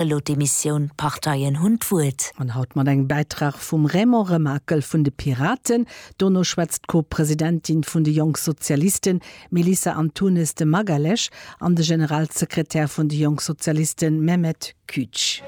elo d'Emissioun D'Parteien hunn d'Wuert. An haut mat engem Bäitrag vum Raymond Remakel vun de Piraten. Dono schwätzt d'Co-Presidentin vun de Jonk Sozialisten, Melissa Antunes de Magalhães, an de Generalsekretär vun de Jonk Sozialisten, Mehmet Küç.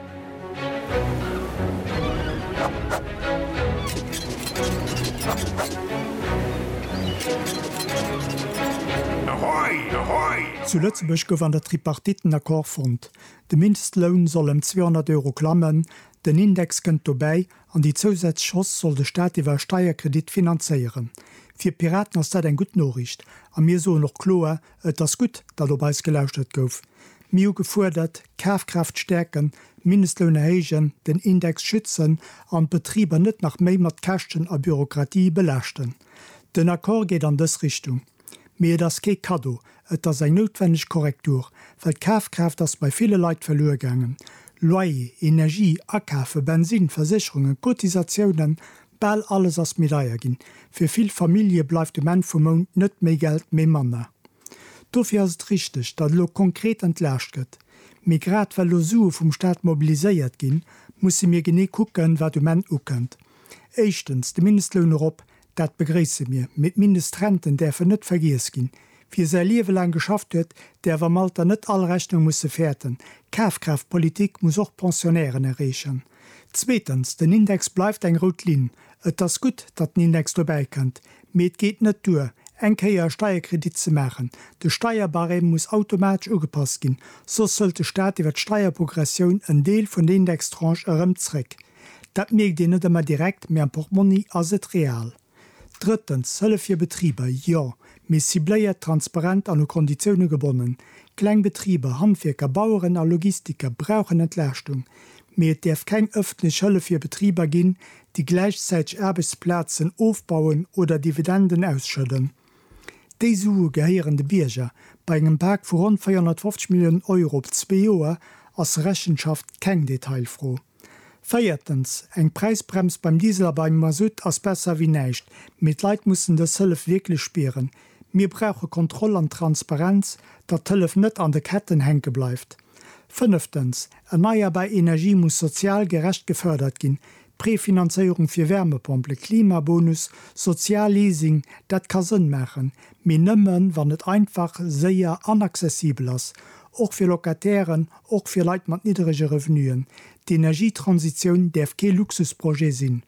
Zu Lëtzebuerg gouf an der Tripartite en Accord fonnt. De Mindestloun soll ëm 200 Euro klammen, den Index kënnt dobäi an déi zousätzlech Hausse soll de Staat iwwer e Steierkredit finanzéieren. Fir d'Piraten ass dat eng gutt Noriicht a mir soen och kloer, et ass gutt, datt op eis gelauschtert gouf. Mir hu gefuerdert, d'Kafkraaft stäerken, Mindestloun erhéijen, den Index schützen an d'Betriber net nach méi mat Käschten a Bürokratie belaaschten. Den Accord geet an dës Richtung. Mee et ass kee Kaddo, et ass eng noutwenneg Korrektur, well d'Kafkraaft ass bei ville Leit verluer gaangen. Loyer, Energie, Akafe, Bensinn, Versécherungen, Cotisatiounen, bal alles ass méi deier ginn. Fir vill Famillje bleift um Enn vum Mount net méi Geld, mee manner. Dofir ass et richteg, datt elo konkret entlaascht gëtt. Mee grad well elo Sue vum Staat mobiliséiert ginn, musse mir genee kucken, wat um Enn ukënnt. Éischtens, de Mindestloun erop, Dat begréisse mir, mee d'Mindestrenten däerfen net vergiess ginn. Wie säi Liewe laang geschafft huet, däerf am Alter net all Rechnung musse fäerten. D'Kafkraaftpolitik muss och d'Pensionnairen erreechen. Zweetens, den Index bleift eng rout Linn. Et ass gutt, datt den Index dobäi kënnt, mee et geet net duer, eng Kéier e Steierkredit ze maachen. De Steierbarème muss automatesch ugepasst ginn, soss hëlt de Staat iwwer d'Steierprogressioun en Deel vun der Indextranche erëm zréck. Dat mierkt een net ëmmer direkt, mee am Portmonni ass et real. Drëttens, Hëllef fir Betriber, jo, mee cibléiert, transparent an u Konditioune gebonnen. Kleng Betriber, Handwierker, Baueren a Logistiker brauchen Entlaaschtung, mee et däerf keng ëffentlech Hëllef fir Betriber ginn, déi gläichzäiteg Aarbechtsplazen ofbauen oder Dividenden ausschëdden. Déi Sue gehéieren de Bierger. Bei engem Pak vu ronn 450 Milliounen Euro op zwee Joer ass Rechenschaft keng Detailfro. Véiertens, eng Präisbrems beim Diesel a beim Masutt ass besser wéi näischt, mee d'Leit mussen dës Hëllef wierklech spieren. Mir brauche Kontroll an Transparenz, datt d'Hëllef net an de Ketten hänke bleift. Fënneftens, erneierbar Energie muss sozial gerecht gefërdert ginn, Prefinanzéierung fir Wärmepompelen, Klimabonus, Sozialleasing, dat ka Sënn maachen, mee nëmme wann et einfach, séier an accessibel ass. Och fir Locatairen, och fir Leit mat nidderege Revenuen. D'Energietransitioun däerf kee Luxusprojet sinn.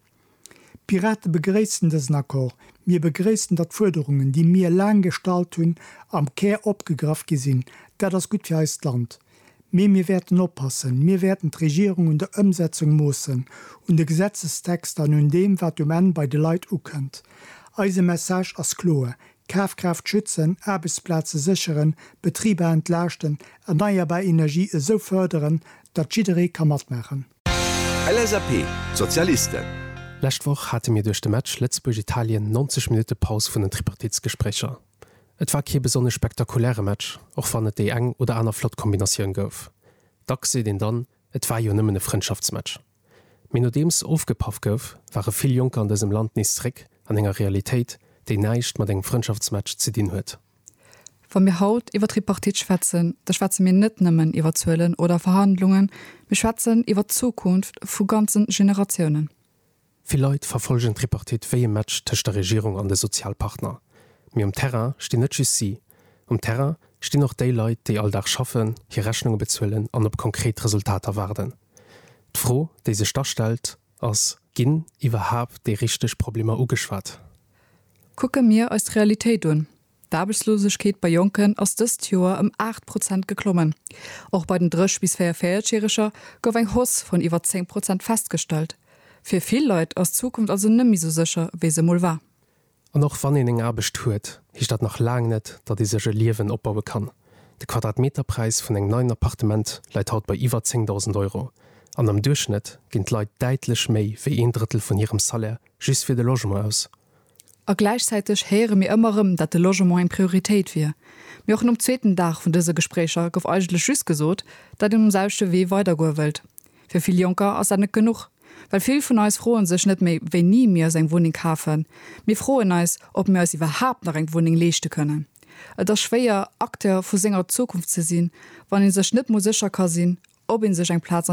D'Pirate begréissen dësen Accord. Mir begréissen, datt d'Fuerderungen, déi mir laang gestallt hunn, am Kär opgegraff gi sinn. Dat ass gutt fir eist Land. Mee mir wäerten oppassen. Mir wäerten d'Regierung un der Ëmsetzung moossen, un de Gesetzestexter an un deem, wat um Enn bei de Leit ukënnt. Eise Message ass kloer, D'Kafkraaft schützen, Aarbechtsplaze sécheren, Betriber entlaaschten, erneierbar Energie esou fërderen, datt jidderee ka matmaachen. LSAP, d'Sozialisten. Lescht Woch hate mir duerch de Match Lëtzebuerg-Italien 90 Minutte Paus vun den Tripartitsgespréicher. Et war kee besonnesch spektakuläre Match, och wann et déi eng oder aner flott Kombinatioun gouf. Dacks seet een dann, et war jo nëmmen e Frëndschaftsmatch. Mee nodeems ofgepaff gouf, ware vill Jonker an dësem Land nees zeréck an enger Realitéit, déi näischt mat engem Frëndschaftsmatch ze dinn huet. Wa mir haut iwwer d'Tripartite schwätzen, da schwätze mir net nëmmen iwwer Zuelen oder Verhandlungen, mir schwätzen iwwer d'Zukunft vu ganze Generatiounen. Vill Leit verfollgen d'Tripartite wéi e Match tëscht der Regierung an de Sozialpartner. Mee um Terrain stinn net just si. Um Terrain stinn och déi Leit, déi all Dag schaffen, hir Rechnunge bezuelen an op konkret Resultater waarden. D'Fro, déi sech da stellt, ass, Ginn iwwerhaapt déi richteg Problemer ugeschwat? Kucke mir eis d'Realitéit un, D'Aarbechtslosegkeet bei Jonken ass dëst Joer ëm 8 Prozent geklommen. Och bei den 30 bis 44 Järeger gouf eng Hausse vun iwwer 10 Prozent festgestallt. Fir vill Leit ass d'Zukunft also net méi sou sécher, wéi se emol war. An och wann een eng Aarbecht huet, heescht dat nach laang net, datt ee sech e Liewen opbaue kann. De Quadratmeterpräis vun engem neien Appartement läit haut bei iwwer 10.000 Euro an am Duerchschnëtt ginn d'Leit däitlech méi wéi een Drëttel vun hirem Salaire just fir de Logement aus. A gläichzäiteg héiere mir ëmmer erëm, datt de Logement eng Prioritéit wier. Mee och nom zweeten Dag vun dëse Gespréicher gouf eigentlech just gesot, datt een um selwechte Wee weidergoe wëllt. Fir vill Jonker ass dat net genuch, well vill vun eis froen sech net méi, wéini mir eis eng Wunneng kafen. Mir froen eis, ob mir eis iwwerhaapt nach eng Wunneng leeschte kënnen. Et ass schwéier, Acteur vu senger Zukunft ze sinn, wann ee sech net mol sécher ka sinn, ob ee sech eng Plaz an